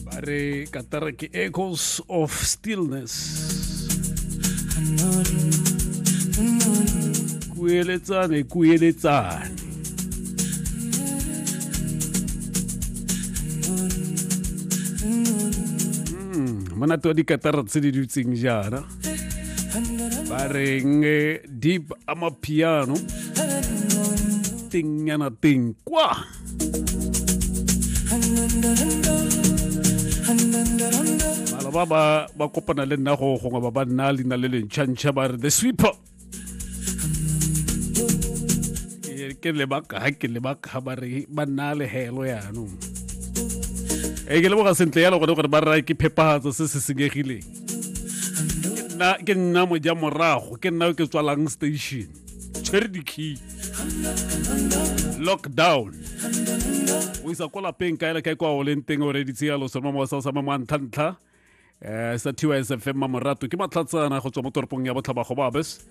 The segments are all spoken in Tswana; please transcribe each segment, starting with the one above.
ba re katara ke echoes of stillness kueletsane kueletsane hmm, monate wa dikatara tse di dutseng jaana ba reng eh, deep amapiano teng yana teng kwa bala ba ba ba kopana le nna go gongwe ba ba nna leina le lentšhantšha ba re the sweeper ke lebaka ga ke lebaka ba re ba nna le helo yanong e ke leboga sentle yalo gone gore ba rra ke phepagatso se se senyegileng ke nna moja morago ke nna o ke tswalang station tshwere di-key lockdown o isa kwa lapeng kae le kae kwa o leng teng o reditse ya losoma mo sa sama mo ntlhantlha eh sa TYS FM ma morato ke matlhatsana go tswa mo toropong ya botlhaba go babes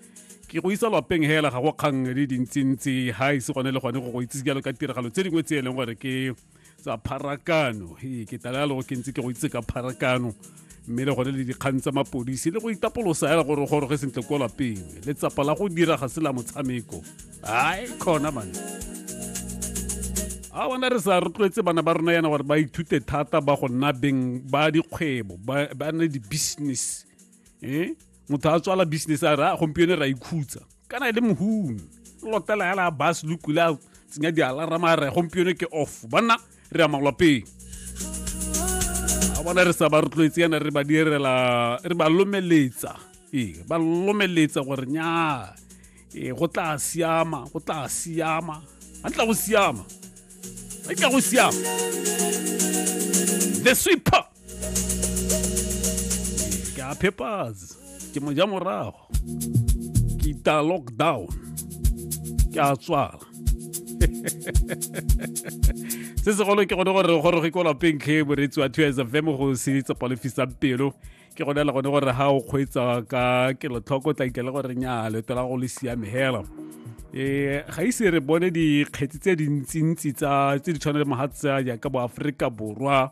ke go isa lapeng hela ga go kgang di dintsintsi ha ise gone le gone go go itsise jalo ka tiragalo tse dingwe tse e leng gore ke tsa pharakano ee ke tala le go ke ntse ke go itse ka pharakano mme le gone le dikgang tsa mapodisi le go itapolosa ya gore goroge sentle ko lapeng le tsapa la go dira ga se la motshameko ai khona mane a bona re sa rotloetse bana ba rona yana gore ba ithute thata ba go nna beng ba dikgwebo ba nne di-business e motho a tswala business a re a gompieno ra ikhutsa kana e le mohumi lotela ya la bas lokula tsenya dialarama re gompieno ke off banna re ya malwapeng a bona re sa ba rotloetse yana re ba direla re ba lomeletsa ee ba lomeletsa gore nya ee go tla siama go tla siama ga tla go siama ga tla go siama the sweeper ka phepase ke mo ja morago ke ita lockdown ke a tswala se segolo ke gone gore re goroge ko lapeng tlhe moreetsi wa two fm go se tsepa le fisang pelo ke gone le gone gore ga o kgweetsa ka kelotlhoko tla ikele gore nya leto la go le siame hela ee ga ise re bone dikgetsi tse dintsintsi tse di tshwana le mogatsa jaaka boaforika borwa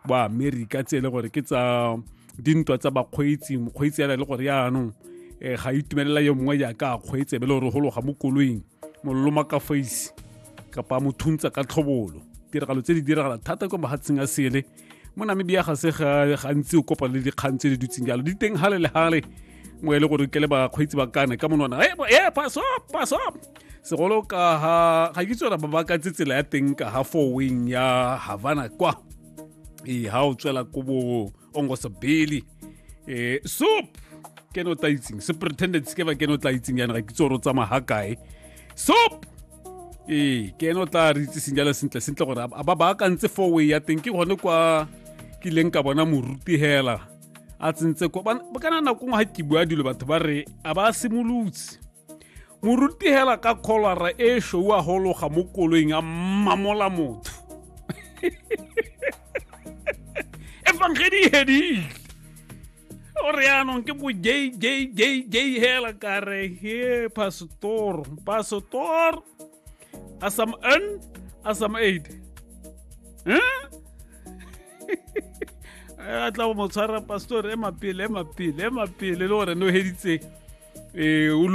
ba amerika tse e le gore ke tsa dintwa tsa bakgweetsi mokgweetsi yana e le gore yaanong um eh, ga itumelela yo mongwe jaaka a kgweetse be le gore go loga mo koloing mololoma ka face kapa mo thuntsa ka tlhobolo tiragalo tse di diragala thata kwa mahatsheng a sele mo namibia ga se gantsi o kopana le dikgang tse di dutseng jalo di teng gale le gale mo e le gore ke le bakgweetsi ba kana ka monwana e paso paso segolo ka ha ga ke tswela ba ba ka tsela ya teng ka ha four wing ya havana kwa e ha o tswela ko bo ongosabeli e soup ke no tla itseng superintendent ke ba ke no tla itseng yana ga ke tsoro tsa maha kae soup ee ke ene o tla re itseseng jalo sentle sentle gore a ba baakantse four way ya teng ke gone kwa ke ileng ka bona moruti hela a tsentse ko kana nako ngwe ga ke bua dilo batho ba re a ba simolotse morutegela ka kholwara e shou a gologa mo koloing a mmamola motho efangedi e hedile o re yaanong ke bo j j j j hela ka re he pastor pastor a some n a some aid a tla mo tshwara pastor e mapele e mapele e mapele le gore no heditseng um